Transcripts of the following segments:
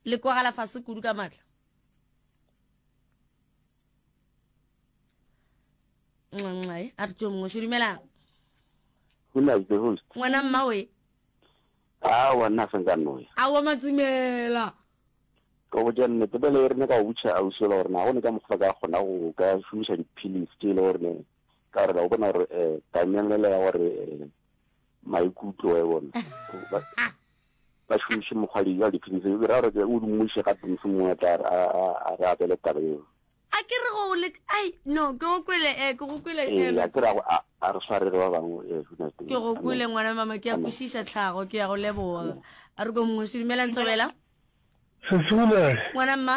le kwagala fase kudu ka matla nxanxai a re tso mongwe se dumelang ngwana mmawe a wa nna senka noya a wa matsimela ka go ja nnete pele e rene ka go butšha ausi ola gore na go ne ka mokgwa ka kgona go ka šomiša diphilisi tse e le gore ka gore ka bona gore um eh, tamelela ya gore eh, maikutlo wa e bona ba šomiše mokgwa le jwa diphinisi e ra gore ke o dummuše ga pinisi mongwe a tla a re abele taba eo a ke re go le ai no ke go kwele e eh, ke go kwele e eh, a ke ra go a re swarere ba bangwe e eh, huna teng ke go kwele ngwana mama ke ya kwishisha tlhago ke ya go leboga a re go mongwe se dumela ntsobela se sula ngwana mma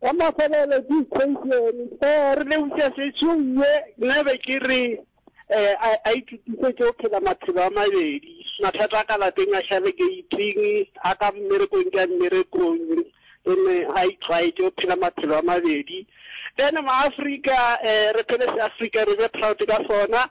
Ka mafelelo ke equation. Ee, re lebogiša sešong ye. Nna be ke re a, a itokisetše go phela maphelo a mabedi, mathata a ka lapeng a šale gate-ing, a ka mmerekong ke a mmerekong, then a itlwaetše go phela maphelo a mabedi. Then ma-Afrika re phele se-Afrika, re be proud ka sona.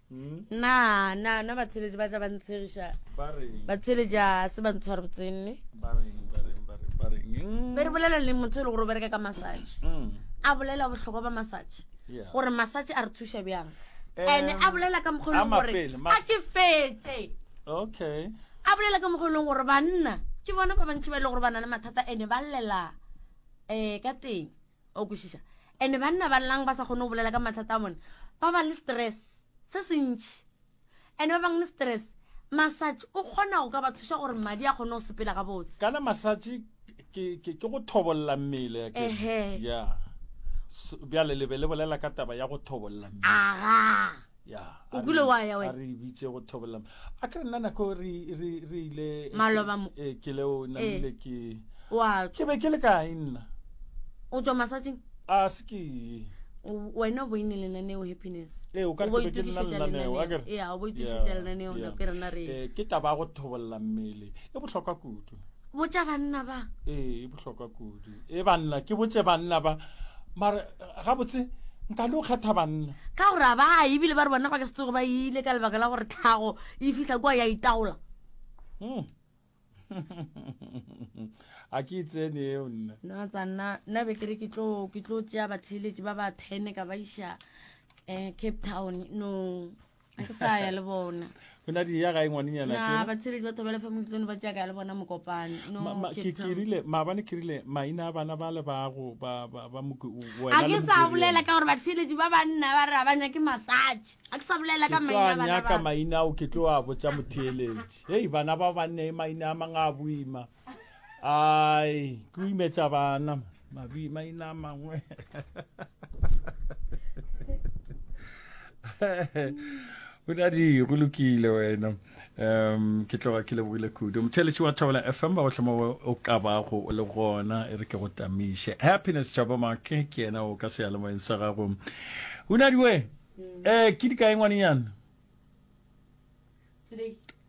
na na na batsheletši ba tla ba ntshegiša batsheletši a se ba ntshware botsenne be re bolela le motho e le gore o bereka ka massage mm. a bolela bohlokwa ba massage gore massage a re thuša bjang ande a bolela ka mokgwa eleng gore a ke fetse okay a bolela ka mokgwa eleng gore banna ke bona ba bantši ba e le gore ba na le mathata ande ba llela um eh, ka teng o kwešiša ande banna ba llang ba sa kgone go bolela ka mathata a bone ba ba le stress se se ntšhi ande ba bang le stress masatši o kgona go ka ba thuša gore madi a kgone go sepela ga botse kana masatši ke go thobolla mmele ya bjale le be le bolela ka taba ya go thobolla mmele o kule wa ya wena re bitse go thobolla a ke nna nako re re re ile eh, maloba mo e ke le o na eh. le ke wa ke be ke le ka inna o tswa masajing a se ke wena o boine lenaneo happiness ee o ka re ke nna lenaneo a ke re ya o boitse tsa lenaneo na ke rena re eh, ke taba go thobolla mmele e bohlokwa kudu botša banna ba ee e bohlokwa kudu e banna ke botše banna ba mara gabotse nka le o kgetha banna ka gore a ba ebile ba re bona ba ke se tsogo ba ile ka lebaka la gore tlhago e fihla kua ya itaola Hmm. a ke itsene eo nna no tsa nna nna be ke re ke tlo ke tlo tšea batheeletši ba ba ten ka ba iša um cape town no a ke sa ya le bona go na di ya gae ngwanenyana na batsheletsi batho ba lefa motlone ba jaaka le bona mokopane no Ma- ma- Cape ke Town. kirile maabane kirile maina a bana ba le bago ba ba- ba moke o- a wena le ke sa Mokiriana. bolela ka gore batsheletsi ba banna ba re ga ba nyake massage a ke sa bolela ka ke tlo maina a a bana nyaka ba maina ao ke tlo a botsa motheeletši hei bana ba banne maina a mang a boima ai ke imetsa bana mabi maina mangwe o ne a di go lokile wena um ke tloga ke lebogile kudu motheletši wa thabela f m ba go tlhama o ka bago o le gona e re ke go tamiše happiness tšhaba make ke yena o ka seyalemoyeng sa gago o ne a diwe um ke di kae ngwanenyana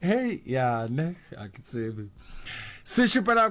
hei ya ne a ke tsebe se šupela